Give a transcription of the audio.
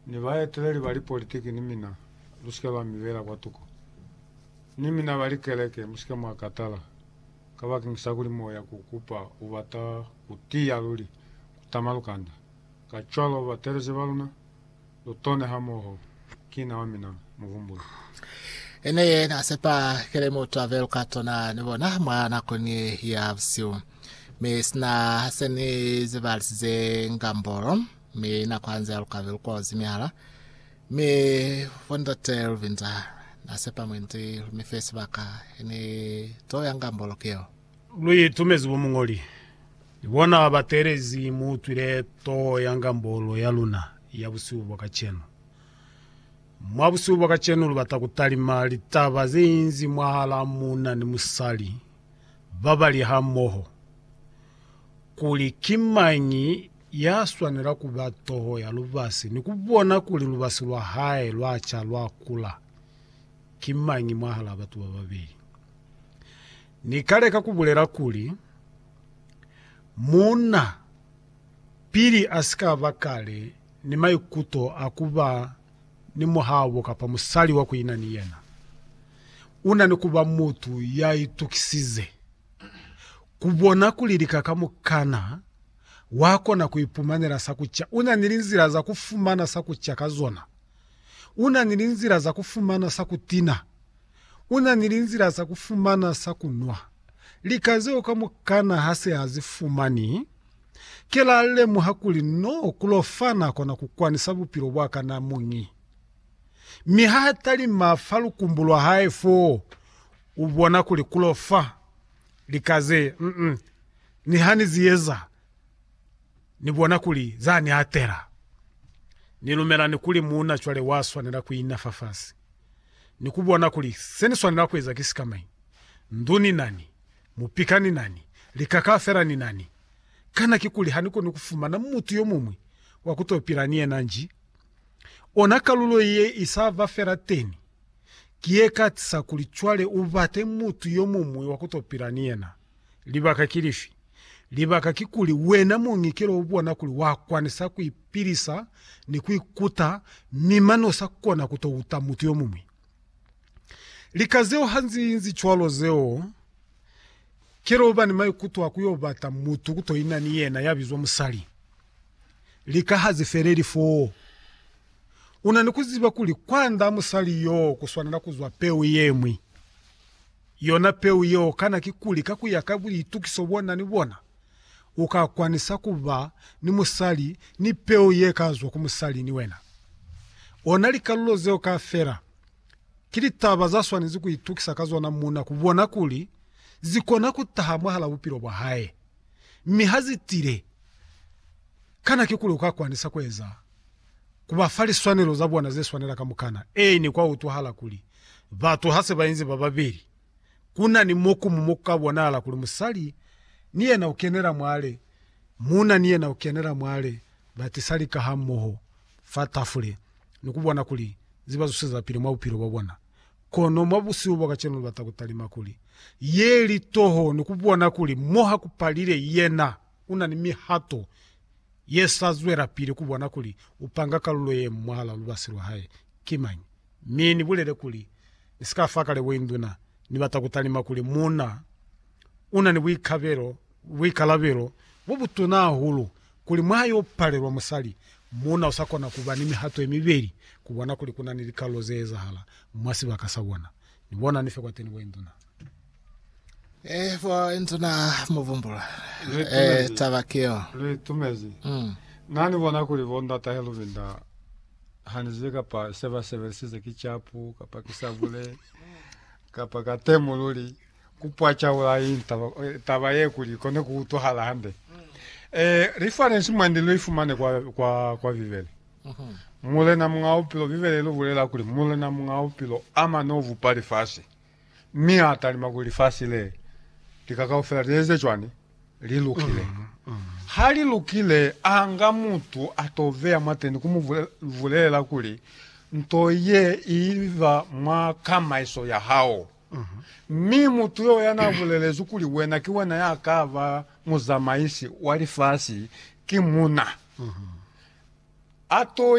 Ni baeteleli ba lipolitiki ni mina, musike ba mi beela kwatuko. Ni mina ba likeleke, musike mwa katala, kabakeñisa kuli moya ku kupa u bata ku tiya luli, ku tama lukanda. Kacwalo, batelezi ba luna, lu tone hamoho. Ki na wa mina, muhumbuli. I ne ye na sepa kili mutu a be luka tona ni bona mwa nakoni ya busihu. Mi sina se ni zibalisize ngambolo. mi na kwanzela lukabe lukozi mihala, mi Bondate Luvinza na sepa mwendi lu mi fe sibaka he ni to yanga mboloki yeo. Lu itumezi bo muñoli, ni bona ba ba teelezi mu utwile to yanga mbolo ya luna ya busihu bwa kacenu. Mwa busihu bwa kacenu lu bata ku talima litaba ze inzi mwahala muna ni musali ba ba li hamoho. kuli ki mañi ya swanela ku ba toho ya lubasi ni ku bona kuli lubasi lwa hae lwa ca lwa kula ki mañi mwahalaa batu ba babeli. Ni ka leka ku bulela kuli, Muuna, pili a si ka ba kale ni maikuto a ku ba ni muhabo kapa musali wa ku ina ni yena, u na ni ku ba mutu ya itukisize. Ku bona kuli lika kamukana wa kona ku ipumanela sa ku ca, u na ni linzila za ku fumana sa ku ca ka zona. U na ni linzila za ku fumana sa ku tina. U na ni linzila za ku fumana sa ku nwa. Lika zeo kamukana ha se a zi fumani, ki la lemuha kuli no ku lo fa na kona ku kwanisa bupilo bwa ka na muñi. Mi ha talima fa lukumbu lwa hae foo, u bona kuli ku lo fa. Lika ze, mm, niha ni zi eza, ni bona kuli za ni atela. Ni lumela ni kuli muuna cwale wa swanela ku ina fafasi, ni ku bona kuli se ni swanela ku eza ki sika mañi. Ndu ni nani, mupika ni nani, lika kaufela ni nani. Kana kikuli ha ni koni ku fumana mutu yo muñwi wa ku to pila ni yena nji? Ona kalulo ye i sa ba fela teni. Ki ye katisa kuli cwale u bate mutu yo muñwi wa ku to pila ni yena. Libaka ki lifi? Libaka kikuli wena muñi ki lo u bona kuli wa kwanisa ku ipilisa ni ku ikuta mi mane u sa kona ku to uta mutu yo muñwi. Lika zeo ha nzi inzi cwalo zeo ki lo ba ni maikuto a ku yo bata mutu ku to ina ni yena ya bizwa musali. Lika ha zi feleli foo. U na ni ku ziba kuli kwand'a musali yoo ku swanela ku zwa peu ye ñwi. Yona peu yeo kana kikuli ka ku ya ka buitukiso bo na ni bona, u ka kwanisa ku ba ni musali ni peu ye ka zwa ku musali ni wena? Ona likalulo zeo kaufela ki litaba za swanezi ku itukisa ka zona muuna ku bona kuli zi kona ku taha mwahal'a bupilo bwa hae. Mi ha zi tile, kana kikuli u ka kwanisa ku eza ku ba fa liswanelo za bona ze swanela kamukana. Ee, ne kwa utwahala kuli, batu ha se ba inzi ba babeli, ku na ni mo kumu mo ku ka bonahala kuli musali ni yena u kenela mwale, muuna ni yena u kenela mwale, ba tisa lika hamoho fa tafule, ni ku bona kuli ze ba zusezapili mwa bupilo bwa bona. Kono mwa busihu bwa kacenu ni bata ku talima kuli ye li toho ni ku bona kuli mo ha ku palile yena u na ni mihato ye sa zwelapili ku bona kuli u panga kalulo ye mu mwahal'a lubasi lwa hae ki mañi, mi ni bulele kuli, Ni si ka fa kalebo induna. Ni bata ku talima kuli muuna u na ni buikalabelo bo butuna hahulu kuli mwa yo palelwa musali, muuna u sa kona ku ba ni mihato ye mibeli ku bona kuli ku na ni likalulo ze ezahala mwa sibaka sa bona. Ni bona ni fe kwateni bo induna. Eh, bo inzu na muvumbula. Eh, taba keo. Le tumezi. Mm. Na ni bona kuli bo ndata Helubinda hani zile kapa seba sebelisize ki chapu kapa ki sabule kapa ka temululi kupwa chaula intaba eh, taba ye kuli kone ku utwahala hande. Eh, reference mwandi lo ifumane kwa kwa kwa Bibele. Mhm. Mulena munga upilo Bibele lo bulela kuli mulena munga upilo amane uvupa lifasi. Mi a talima kuli lifasi le, lika kaufela li eze cwani? Li lukile. Ha li lukile, a nga mutu a to veya mwateni ku mu bulelela kuli, Nto ye i ba mwa kamaiso ya hao. Mi mutu yo ya n'a bulelezwi kuli wena ki wena ya ka ba muzamaisi wa lifasi, ki muuna. A to